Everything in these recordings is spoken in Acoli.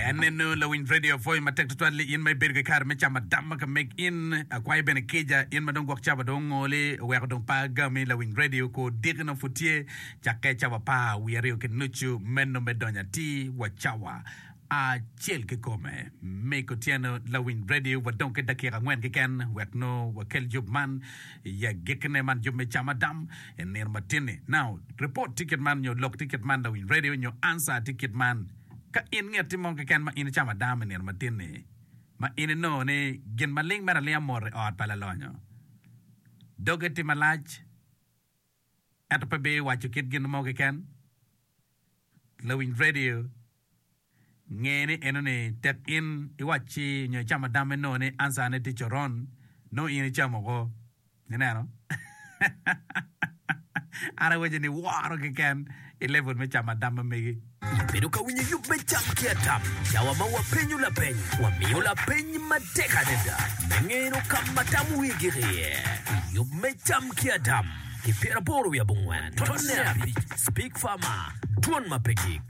En eno lawiny radio pwoyo matek tutwal ni in ma ibedo ki kare me camo adama ka meg in. Akwayo bene kica in ma dong gwok cawa dong ongoli oweko dong pa agami lawiny radio ko diki nongo pud tye cakke cawa pa wiye aryo ki nucu meno me donyo atir wa cawa acel kikome. Miko tyeno lawiny radio wa dong ki dakika angwen keken wek nongo wakel yub man. I agikine man jub me cam adam i nino matin-ni. Now, report tye kit man nyo lok tye kit man, lawiny radio nyo answer tye kit man. Ka in nget tye mo keken ma in icamo adam i nino matin-ni, ma in inongo ni gin maling mere alinga mot i ot pa lalonyo doge tye malac, Ento pe bi waco kit gin mo keken. Lawiny redio nge ni enoni tek in iwacci nyo icamo adamme noo ni answer ne tye coron, noo in icamo ko. Ineno? An awaco ni woro keken i level me camo adamme megi. Wabedo ka winyo yub me tam ki atam. Cawa ma wapenyo lapeny, wamiyo lapeny matek adada me ngeno ka ma tam wigi iye. I yub me tam ki atam ki pyeraboro wiye abongwen tonne abic, Speak Farmer, Dwon ma pe gik.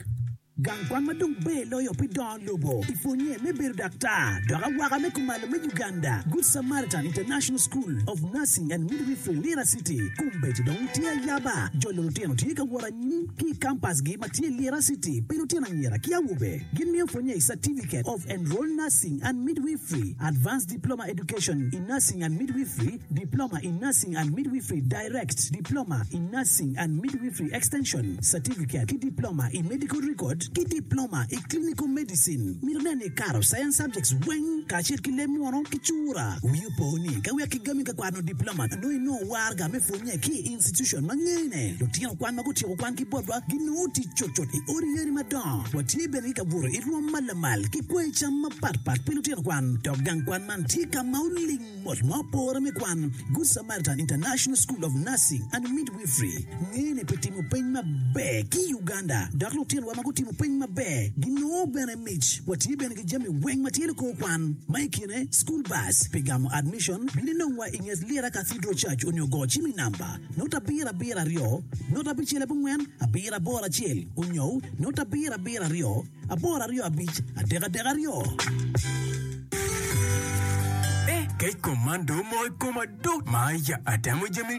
Gang kwan ma dong ber loyo pi dongo lobo i pwonnye me bedo daktar dok awaka me kumalo me Uganda, Good Samaritan International School of Nursing and Midwifery, Lira City, kombeco dong tye ayaba. Jolo lutino tye ka wot Gin ki i kampasgi ma tye i Lira City pi lutino anyira ki awobe gimiyo pwonye i Certificate of Enrolled Nursing and Midwifery, Advanced Diploma Education in Nursing and Midwifery, Diploma in Nursing and Midwifery Direct, Diploma in Nursing and Midwifery Extension, Certificate ki Diploma i Medical Record, ki Diploma i Clinical Medicine. Mito nen ni ikato Science subjects weng kacel ki leb munu ki cura. Wi opo ni ka wek igami ka kwano Diploma nongo inongo warga me pwonye. Ki i institucon ma ngene, lutino kwan ma gutyeko kwangi botwa ginongo tic cutcut i odi yadi madongo. Watye bene ki ka buto i rwom ma lamal ki kwayo cam mapatpat pi lutino kwan. Dok gang kwan man tye ka ma oling mot ma opore me kwan. Good Samaritan International School of Nursing and Midwifery ngene pi timo peny maber ki i Uganda, dok lutinowa ma gutimo peny maber ginongo bene Mic, Watye bene ki jami weng ma tye likor kwan, ma i kine School Bus pi gamo admission, bino inongwa i nget Lyera Cathedral Church onyo go cim i namba, note abiro abiro aryo, note abicel abongwen, abiro aboro acel onyo note abiro abiro aryo, aboro aryo abic, adek adek aryo. Kec komando mo i koma dok ma aye atemo jami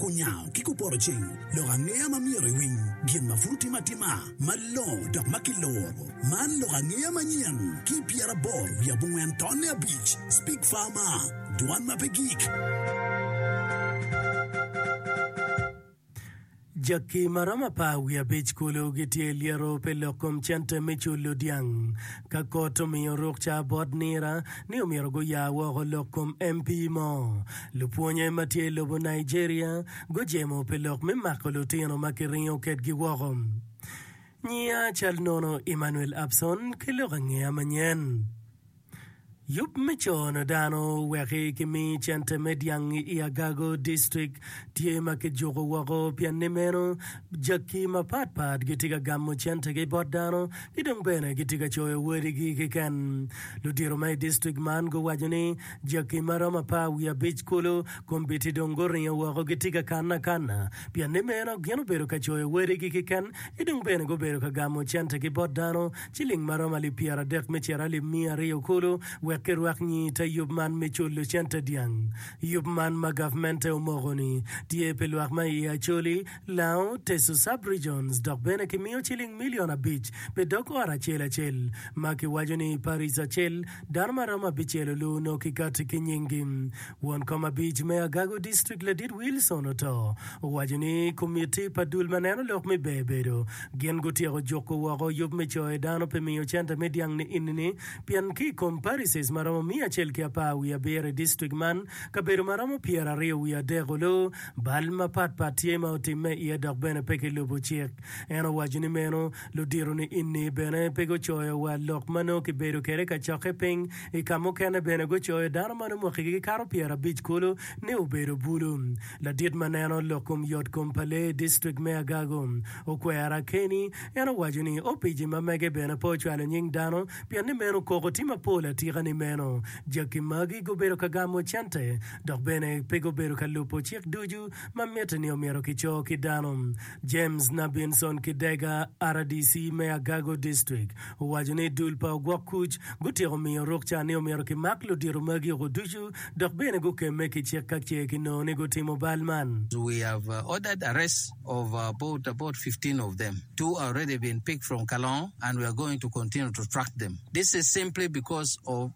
Kunyango ki kupoto ceng lok angeya ma myero iwiny gin ma pud otime atima malongo dok ma kiluro. Man lok angeya manyen ki i pyeraboro wiye abongwen tonne abic, Speak Farmer, Dwan ma pe gik. Jackie ma romo apar wiye abic kulu gitye lyeto pi lok kom cente me culo dyang. Ka kot omiyo rukca bot nira ni omyero guya woko lok kom MP mo, Lupwonye ma tye i lobo Nigeria gujemo pi lok me mako lutino ma kiringo kedgi woko. Nyiya cal nono Emmanuel Abson ki lok angeya manyen. Yub me cono dano weki kimi cente me dyang i Agago District tye ma kijuko woko pien ni meno jaki mapat pat gitye ka gamo centegi bot dano ki dong bene gitye ka coyo wadigi kiken. Ludito ma i district man guwaco ni Jaki ma romo apar wiye abic kulu komgi ti dong guringo woko gitye ka kanne akanna, pien ni meno gin obedo ka coyo wadigi keken, ki dong bene gubedo ka gamo centegi bot dano, ciling ma romo alip pyeradek me ciro alip miya aryo kulu, wek kirwak nyi i te yub man me culo cente dyang. Yub man ma gavmente omoko-ni tye pi lwak ma iye Acholi, Lango, Teso Sub-Regions dok bene kimiyo ciling milion abic pi dog ot acel acel, ma kiwaco ni paric acel, Dano ma romo abicel olu onongo kikati ki nyinggi. Won kom abic me Agago District Ladit Wilson Oto owaco ni komitti pa dul ma neno lok me ber bedo gin gutyeko juko woko yub me coyo dano pi miyo centa me dyang ni inini pien ki i kom parishes ma romo miya acel ki apar wiye abiro i district man kabedo ma romo pyeraryo wiye adek olu bal mapatpat tye ma otimme iye dok bene pe kilubo cik. En owaco ni meno ludito ni inni bene pe gucoyo wa lok ma nongo kibedo kwede i kacokke piny. I ka mukene bene gucoyo dano ma nongo mwakigi gikato pyerabic kulu ni obedo bulu. Ladit ma neno lok kom yotkom pa lee i distrik me Agago, Okwera Kenny, en owaco ni opici ma mege bene pe ocwalo nying dano pien ni meno koko tye mapol atika ni meno jaki magi gubedo ka gamo cente dok bene pe gubedo ka lubo cik ducu ma mitte ni omyero kico ki dano James Nabinson Kidega, rdc me Agago District, owaco ni dul pa ogwok kuc gutyeko miyo ruk ca ni omyero kimak ludito magi oko ducu dok bene gukemme ki cik ka ce kinongo ni gutimo bal man. We have ordered arrest of about about fifteen of them, two are already been picked from Kalongo and we are going to continue to track them, this is simply because of.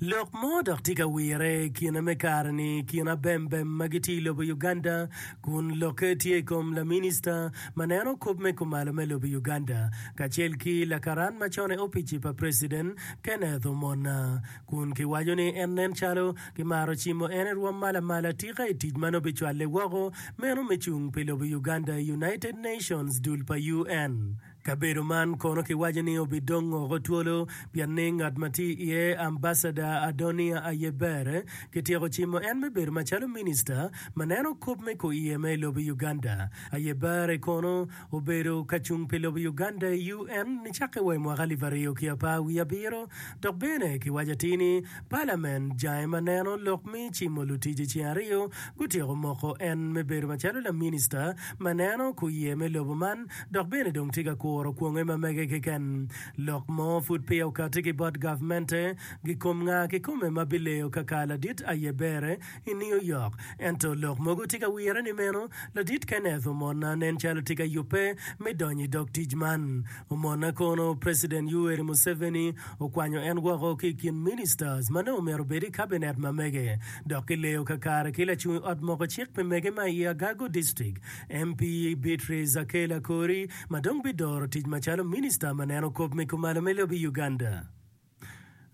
Lok mo dok tye ka wirre i kine me kare-ni i kin abembem ma gitye i lobo Uganda kun lokke tye i kom laminista ma neno kop me kumalo me lobo Uganda kacel ki lakaran ma con i opic-ci pa preciden Kenneth Omona kun kiwaco ni en nen calo kimaro cimo en i rwom ma lamal atika i tic ma nongo bicwalle woko meno me cung pi lobo Uganda i United Nations dul pa UN Kabedo man kono kiwaco ni obidong oko twolo pien ni ngat ma tye iye, Ambasada Adoniya Ayebare, kityeko cimo en me bedo macalo minista ma neno kop me kor iye ma i lobo Uganda. Ayebare kono obedo kacung pi lobo Uganda i UN nicakke wa i mwaka alip aryo ki apar wiye abiro. Dok bene kiwaco atir ni palamen jange ma neno lok me cimo lutic i ceng aryo gutyeko moko en me bedo macalo laminista ma neno kuye me lobo man dok bene dong tye ka kuro kwonge ma mege keken. Lok mo pud peya okati ki bot gavmente gikom nga kikome ma bileyo kaka ladit aye bere I New York, ento lok mogo tye ka wire ni meno, Ladit Kenneth omona nen calo tye ka yubbe me donyo i dog tic man. Omona kono President Yoweri Museveni okwanyo en woko ki i kin ministers ma nongo myero obed i Cabinet ma mege, dok kileyo kakare ki lacung i ot moko cik pi mege ma i Agago District, MP Beatrice Akel Akori ma dong bidoro tic macalo Minister ma neno kop me kumalo me lobo i Uganda.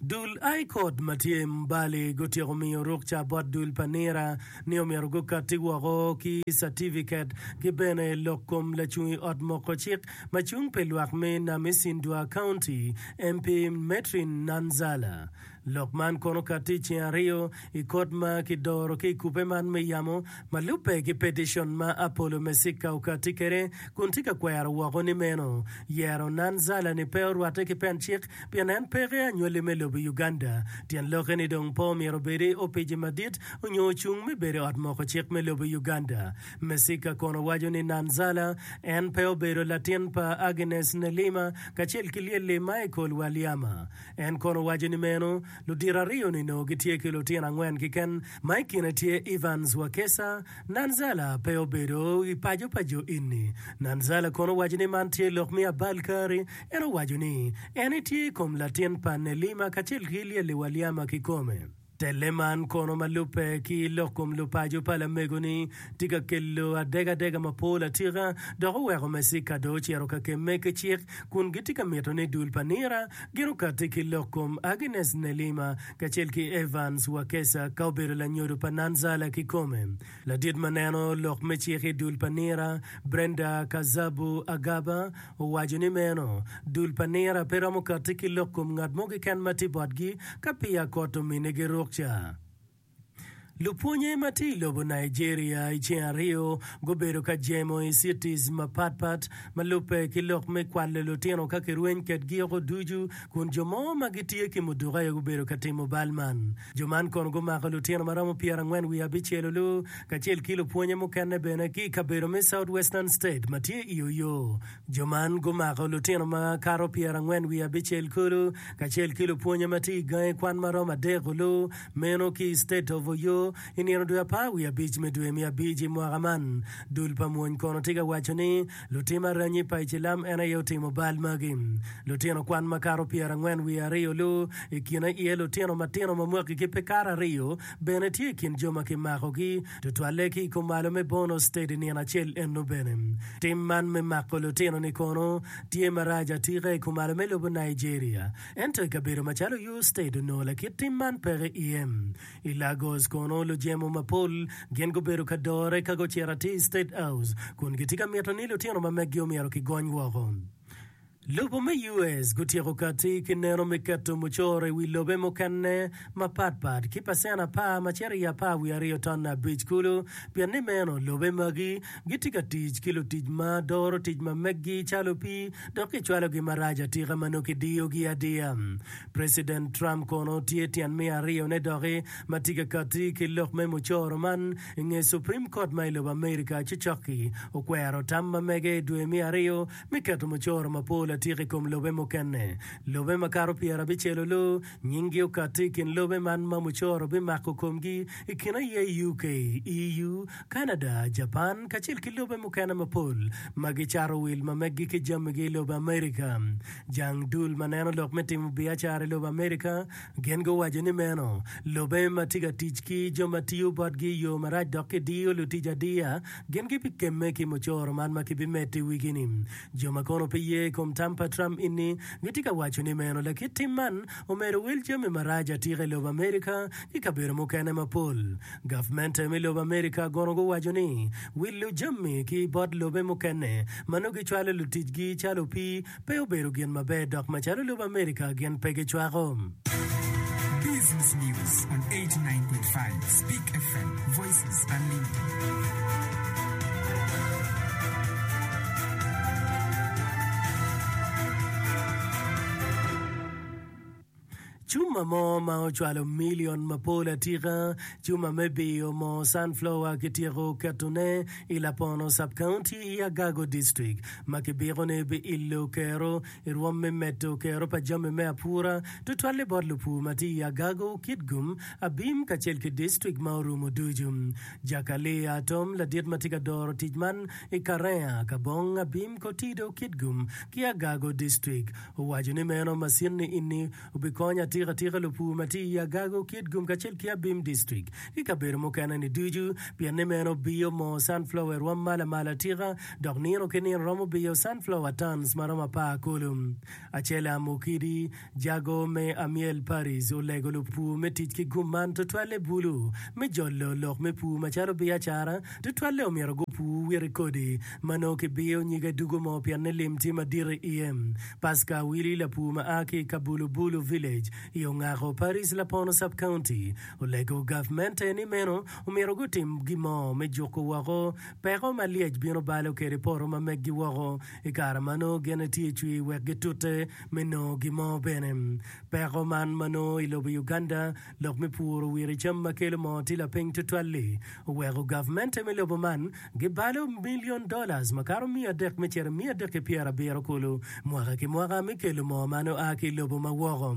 Dul Aikot ma tye i Mbale gutyeko miyo rukca bot dul pa Nira ni omyero gukatti woko ki catifiket ki bene lok kom lacung i ot moko cik ma cung pi lwak me Namisindua County, MP Metrin Nanzala. Lok man kono katti i ceng aryo i kot ma ki doro ki i kubbe man me yamo ma lubbe ki peticion ma Apollo Mesica okatti kede kun tye ka kwero woko ni meno yero Nanzala ni pe orwatte ki pen cik pien en peke anywali me lobo Uganda. Tyen lokke ni dong pe omyero obedi Opici Madit onyo ocung me bedo ot moko cik me lobo Uganda. Mesika kono waco ni Nanzala en pe obedo latin pa Agnes Nelima kacel ki lyelli Michael Walyama. En kono waco ni meno ludito ariyo ni noo gitye ki lutino angwen kiken ma i kine tye Evans Wakesa, Nanzala pe obedo i paco pa jo inni. Nanzala kono waco ni man tye lok me abal kari En owaco ni en etye i kom latin pa Nelima kacel ki lyeliwa Lyama kikome. Telle man kono ma lubbe ki lok kom lupaco pa lamego-ni tye ka kelo adegadega mapol atika dok oweko Mecika dong ocito kakemme ki cik kun gitye ka mito ni dul pa nira gin okatti ki lok kom Agnes Nelima kacel ki Evans Wakesa ka obedo lanyodo pa Nanzala kikome. Ladit ma neno lok me cik i dul pa nira, Brenda Kazabu Agaba, owaco ni meno, Dul pa nira pe romo katti ki lok kom ngat mo keken ma tye botgi ka peya kot ominnigi rukca. Lupwonye ma tye i lobo Nigeria i ceng aryo gubedo ka jemo i cities mapat pat ma lubbe ki lok me kwalo lutino ka kirweny kedgi oko ducu kun jo mo ma gitye ki muduku aye gubedo ka timo bal man. Jo man kono gumako lutino ma romo pyerangwen wiye abicel olu, kacel ki lupwonye mukene bene ki i kabedo me Southwestern State ma tye i Oyo. Jo man gumako lutino ma kato pyerangwen wiye abicel kulu, kacel ki lupwonye ma tye i gangi kwan ma romo adek olu, meno ki i State of Oyo, i nino dwe apar wiye abic me dwe me abic i mwaka man. Dul pa mwony kono tye ka waco ni, Lutim aranyi pa icilam en aye otimo bal magi. Lutino kwan makato pyerangwen wiye aryo-lu i kine iye lutino matino ma mwaki ki pe kato aryo bene tye i kin jo ma kimakogi, tutwalle ki i kumalo me Bono State i nino acel eno bene. Tim man me mako lutino-ni kono tye marac atika i kumalo me lobo Nigeria, ento i kabedo macalo Oyo State onongo lakit tim man peke iye. I Lagos kono, lujemo mapol gin gubedo ka dore ka gucito atir i State House kun gitye ka mito ni lutino ma meggi omyero kigony woko. Lobo me US gutyeko katti ki neno me keto mucoro i wi lobe mukene mapat pat ki pacent apar macito i apar wiye aryo ton abic kulu pien ni meno lobe magi gitye ka tic ki lutic ma doro tic ma meggi calo opii dok kicwalogi marac atika ma nongo kidiyogi adiya. President Trump kono tye tyen me aryo ne doki ma tye ka kati ki lok me mucoro man inge Supreme Court ma ilobo America ci cokki okwero tam ma mege idwe me aryo me keto mucoro mapol atika ikom lobe mukene. Lobe makato pyera abicel olo nying gi okati ikin lobe man ma mucoro bimako komgi ikine aye UK, EU, Canada, Japan kacel ki lobe mukene mapol ma gicato wil ma meggi ki jami gi ilobo America. Jang dul ma neno lok me timo biacara i lobo Amerika gin guwaco ni meno lobe ma tye ka tic ki jo ma tiyo botgi i yo marac dok kidiyo lutic adiya. Gin gibikemme ki mucoro man ma kibimedo i wigi-ni. Jo ma kono pe ye i kom tam pa Trump ini gitye ka waco ni meno lakit tim man omedo wil jami marac atika i lobo Amerika ki kabedo mukene mapol. Gavmente me lobo Amerika kono guwaco ni wilo jami ki bot lobe mukene ma nongo gicwalo luticgi calo opii pe obedo gin maber dok macalo lobo Amerika gin pe gicwako. Business News on 89.5 Speak FM, Voices Unlimited. Cuma mo ma ocwalo milion mapol atika, cuma me biyo moo sunflower kityeko keto ne i Lapono Sub-County i Agago District ma kibiko ni biillo kero i rwom me medo kero pa jami me apura tutwalle bot lupur ma tye i Agago, Kitgum, Abim kacel ki District ma orumo ducu. Jakalia Atom ladit ma tye ka doro tic man i Karea, Kabong, Abim, Kotido, Kitgum ki Agago District Owaco ni, Meno macinni enni obikonya atika atika lupur ma tye i Agago, Kitgum kacel ki Abim District ki kabedo mukene-ni ducu pien ni meno biyo moo sunflower i rwom mala mala atika dok nino ki nino romo biyo sunflower tons ma romo apar kulu. Acella Mukidi, Jago me Amyel Parish, olego lupur me tic ki gum man tutwalle bulu me jolo lok me pur macalo biacara, tutwalle omyero gupur witi kodi ma nongo kibiyo nyig adugo mo pienni lim tye madit i iye. Paska Awili lapur ma a ki i Kabulubulu Village i Ongako Parish, Lapono Sub-County, olego gavmente ni meno omyero gutim gin mo me juko woko peko ma lyec bino balo kwede poto ma meggi woko i kare ma nongo gin etye cwir wek gitute me nongo gin mo bene. Peko man ma nongo i lobo Uganda Lok me puro wire cam ma kelo moo tye lapiny tutwal-li, oweko gavmente me lobo man gibalo milion dola makato miya adek me cito i miya adek ki pyerabiro kulu mwaka ki mwaka me kelo moo man oa ki i lobo ma woko.